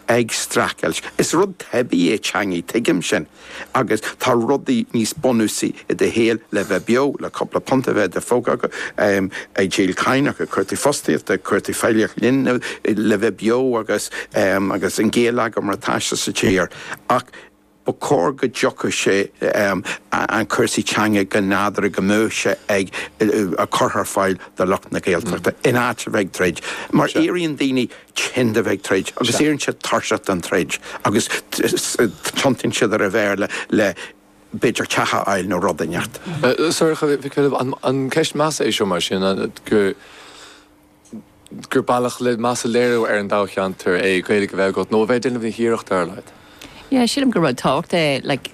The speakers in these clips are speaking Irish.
ag streachailt. Is rud teibí é teangaidh, tuigim sin. Agus tá rudaí níos bunúsaí i do shaol le bheith beo, le cúpla punta a bheith i do phóca agat, ag díol caineach, ag cuartú fostaíochta, ag cuartú feighlíocht linbh le bheith beo agus agus an géilleagar mar tá sé sa tír. Ach. Ba chóir go dtiocfadh sé ann cúrsaí teanga go nádúrtha go mbeadh sé á gcur ar fáil do lucht na Gaeltachta in áit a bheith ag troid mar éiríonn daoine tinn de bheith ag troid agus éiríonn siad tuirseach den troid agus tiontaíonn siad ar an Bhéarla le b'fhéidir teach a fháil nó rud inteacht. Sorcha Mhic Philib, An ceist measa é seo mar sin, go. gur bealach le meas a léiriú ar an dtoghcheantar é Gaeilg a bheith agat nó a bheith ag déanamh na hiarrachta ar a laghad. Yeah, sílim gur rud tábhachtach é like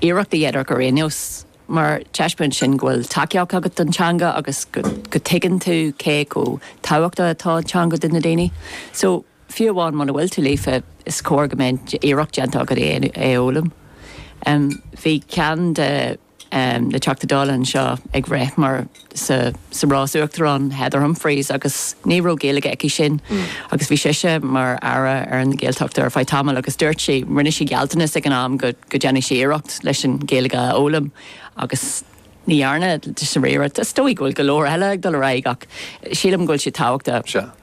iarracht a dhéanamh ar aon nós mar taispeánann sin go bhfuil tacaíocht agat don teanga agus go dtuigeann tú cé chomh tábhachtach atá an teanga do na daoine. So, fiú amháin muna bhfuil tú líofa, is cóir go mbeidh iarracht déanta agat é a fhoghlaim. Bhí ceann de. na Teachtaí Dála anseo ag rith mar sa sa rás Uachtarán, Heather Humphreys agus ní raibh Gaeilge aici sin agus bhí sise mar Aire na Gaeltachta ar feadh tamaill agus dúirt sí, rinne sí gealltanas ag an am go go déanfaidh sí iarracht leis an Ghaeilge a fhoghlaim agus ní dhearna, is dóigh go bhfuil go leor eile ag dul ar aghaidh ach sílim go bhfuil sé tábhachtach.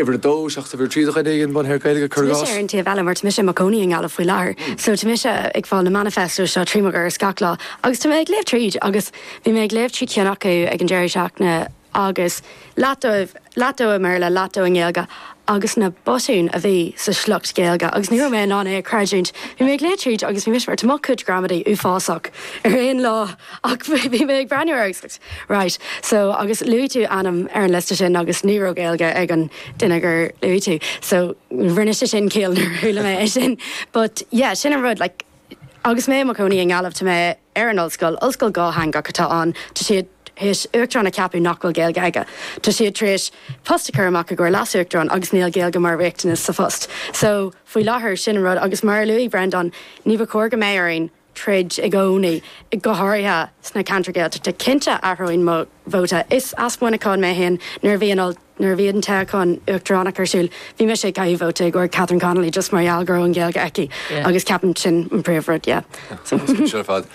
uimhir a dó, seachas uimhir a trí do dhuine éigin, a bhain le Gaeilge, cuir i gcás. Tá mise ar an taobh eile mar tá mise i mo cónaí i nGaillimh faoi láthair so tá mise ag fáil na manifestos seo trí mo dhoras gach lá agus tá mé ag léamh tríd agus bhí mé ag léamh trí cheann acu ag an deireadh seachtaine agus leath dó i mBéarla, leath dó i nGaeilge agus na botúin a bhí sa sliocht Gaeilge agus ní raibh mé in ann é a chreidiúint. Bhí mé ag léamh tríd agus bhí mise mar tá mo chuid gramadaí uafásach ar aon lá! Ach bhí mé ag breathnú ar agus right so agus luaigh tú ainm ar an liosta sin agus ní raibh Gaeilge ag an duine gur luaigh tú so rinne sé sin ciall nuair a chuala mé é sin but yeah sin an rud like agus mé i mo chónaí i nGaillimh tá mé ar an ollscoil, ollscoil dhátheangach atá ann, tá siad théis uachtarán a cheapadh nach bhfuil Gaeilge aige, tá siad tar éis post a chur amach i gcomhair leasuachtarán agus níl Gaeilge mar riachtanas sa phost so faoi láthair sin an rud agus mar a luaigh Brendan ní ba chóir go mbeidh orainn troid i gcónaí, go háirithe sna ceantair Ghaeltachta. Cinnte, athróidh mo vóta. Is as Muineachán mé féin. Nuair a bhí an nuair a bhí an toghchán uachtaránachta ar siúl, bhí mise ag caitheamh vóta i gcomhair Catherine Connolly just mar gheall go raibh an Ghaeilge aici agus ceapaim gur sin an príomh rud, yeah. An-spéisiúil ar fad.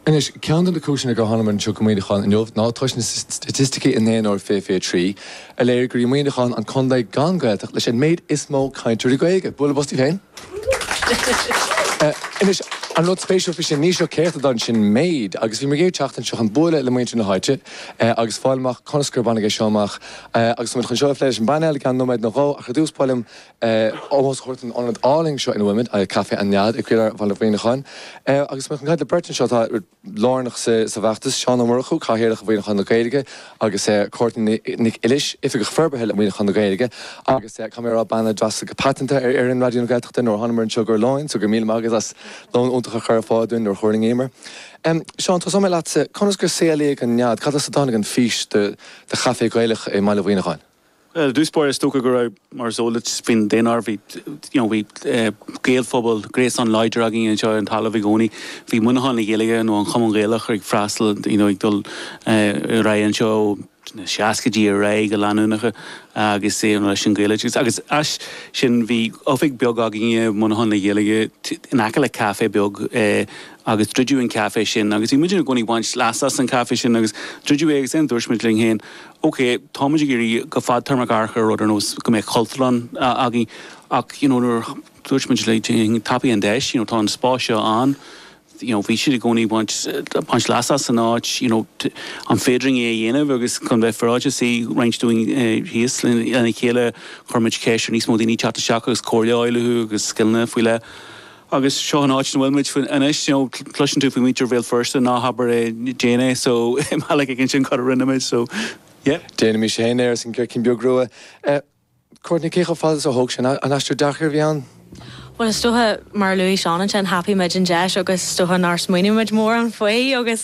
Anois, ceann de na cúiseanna gur tháinig mé anseo go Muineachán inniu ná toisc na staitisticí i ndaonáireamh 2023. a léirigh gur Muineachán an contae gan Ghaeltacht leis an méid is mó cainteoirí Gaeilge. Bualadh bos daoibh féin. Anois, an rud spéisiúil faoi sin, ní seo céart a d'fhan sin méid agus bhí mé ag iarraidh teacht anseo chun bualadh le muintir na háite agus fáil amach conas gur baineadh é seo amach agus tá muid chun seo a phlé leis an bpainéal i gceann nóiméad nó dhó ach ar dtús ba mhaith liom ómós a thabhairt don ionad álainn seo ina bhfuil muid, Café an Nead, i gcroílár Bhaile Mhuineacháin agus tá mé chun caint le beirt anseo atá. lárnach sa bhfeachtas, Seán Ó Murchú, Cathaoirleach Mhuineachán na Gaeilge agus Courtney Nic Uilis, Oifigeach Forbartha le Muineachán na Gaeilge agus caithfidh mé a rá bean a d'fhreastail go paiteanta ar fhoireann Raidió na Gaeltachta nuair a thánamar anseo i gcomhair lóin, so go raibh míle maith agat as lón iontach a chur ar fáil dúinn nuair a thuirlingíomar. Seán, tosóidh mé leatsa, conas gur saolaíodh an nead, cad as a dtáinig an fís do chaifé Gaelach i mBaile Mhuineacháin? Ar dtús báire, is dócha go raibh, mar is eol duit faoin daonáireamh, bhí, you know, bhí Gaelphobal, gréasán láidir againn anseo ar an talamh i gcónaí. Bhí Muineachán le Gaeilge nó an Cumann Gaelach ag freastal, you know, ag dul ar aghaidh anseo ó na seascaidí ar aghaidh go leanúnach agus, you know, leis an Ghaeloideachas. Agus as sin bhí oifig bheag againn i Muineachán le Gaeilge in aice le caife beag agus druideadh an caife sin agus bhí muid i gcónaí ag baint leas as an caife sin agus druideadh é agus then dúirt muid linn féin, OK, táimid ag iarraidh go fadtéarmach amharc ar rud ar nós go mbeadh Cultúrlann againn ach you know nuair a dúirt muid le déanaí tapaigh an deis, you know tá an spás seo ann, you know bhí siad i gcónaí baint baint leas as an áit, you know an féidir linn é a dhéanamh agus chun bheith féaráilte shuigh roinnt dúinn thíos lena chéile chuir muid ceist ar níos mó daoine teacht isteach agus comhairle a fháil uathu agus scileanna faoi leith. Agus seo an áit ina bhfuil muid anois, you know cloiseann tú faoi mhuintir Bhéal Feirste, ná habair é, déan é, so i mbealach éigin sin cad a rinne muid, so yeah. Déanfaidh mise féin é, arsa an Circín Beag Rua. Courtney, cé chomh fada is a thóg sé, an aistear deacair a bhí ann? Bhuel is dócha, mar a luaigh Seán ansin, thapaigh muid an deis agus is dócha nár smaoinigh muid mórán faoi agus.